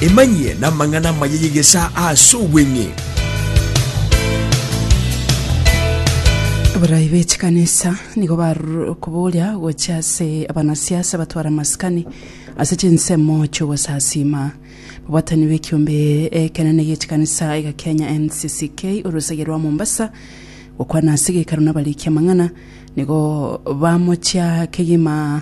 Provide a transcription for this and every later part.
Emanyie namang'ana amaya y'egesaa ase obweng'e. Abarai be chikanisa nigo barure okoboria gochia ase abanasiasa batware amasikani ase chinsemo chi'ogosasiima. Mobwatani bw'ekiombe ekenene gie chikanisa iga Kenya NCCK orosagia rwa Mombasa gokwana ase gekaru nabariki amang'ana nigo bamochia kegima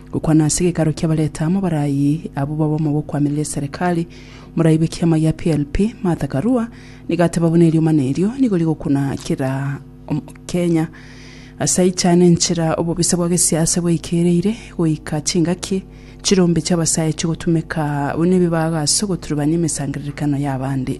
Gokwana ase gekaro ki'abareta amo barayi abwo babomo bokwamiria eserekari, morayi bw'ekiama gia PLP, Martha Karua, nigo ateba buna eriomana erio nigo rigokuna kera Omokenya. Ase aicha nenchera obobisa bwa gesiasa bwaikereire goika chingaki chirombe chi'abasae chigotumeka buna ebibago ase ogoturubania emesangererekano y'abande.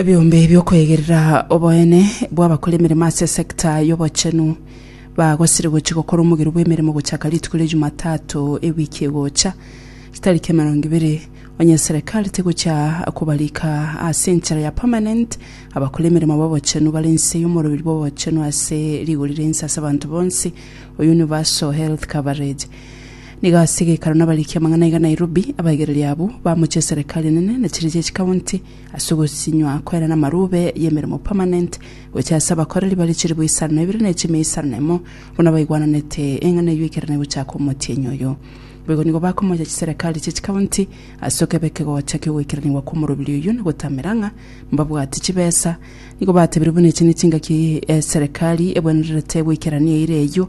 Ebiombe bi'okoegerera oboene bw'abakora emeremo ase esegita y'obochenu bagosire gochia gokora omogero bw'emeremo gochaka rituko ria Jumatato ewiki egocha, chitariki emerongo ibere, onye serikali tegochia kobarika ase enchera ya permanent abakora emeremo b'obochenu bare inse y'omoroberi bw'obochenu ase rigori ria inse ase abanto bonsi, o universal health coverage. Nigo ase egeikaro nabariki amang'ana aiga Nairobi, abaigereria abwo bamochia eserekari enene na chiria chia chikaunti ase ogosinywa kwere namarube yemeremo permanent gochia ase abakoreri bare chilibu isano na ibere na echimia isano na emo buna baigwananete eng'ana eyio ekero negochaka omotienyi oyo. Boigo nigo bakomocha chiserekari chia chikaunti ase okeba ekegocha kiogoikeranigwa kwomorobiri oyio na gotamera ng'a mbabwati chibesa. Nigo batebire buna echi nechingaki eserekari ebwenererete goikerania eira eyio.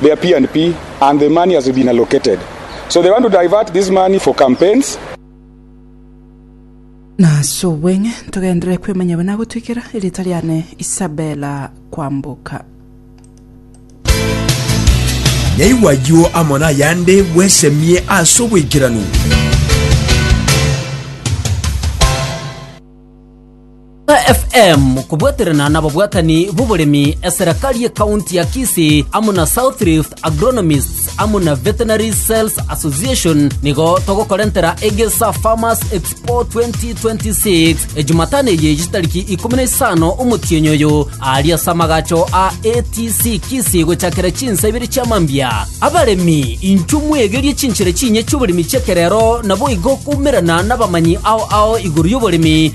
their P and P and the money has been allocated so they want to divert this money for campaigns. Nase obweng'e ntogenderere kwemanya buna gotwikera erieta riane Isabella Kwamboka. Nyaigwa ayio amo nayande bwesemie ase oboikeranu. FM kobwaterana nababwatani b'oboremi eserekari ye county ya Kisii amo na South Rift Agronomists amo na Veterinary Sales Association nigo togokorentera Egesa Farmers Expo 2026 ejumatano eye chitariki ikomi na isano omotienyi oyo aria ase amagacho a ATC Kisii gochakera chinsa ibere chia mambia abaremi inchwe mwegerie chinchera chinye chioboremi chi'ekerero naboigo koumerana nabamanyi ao ao igoro y'oboremi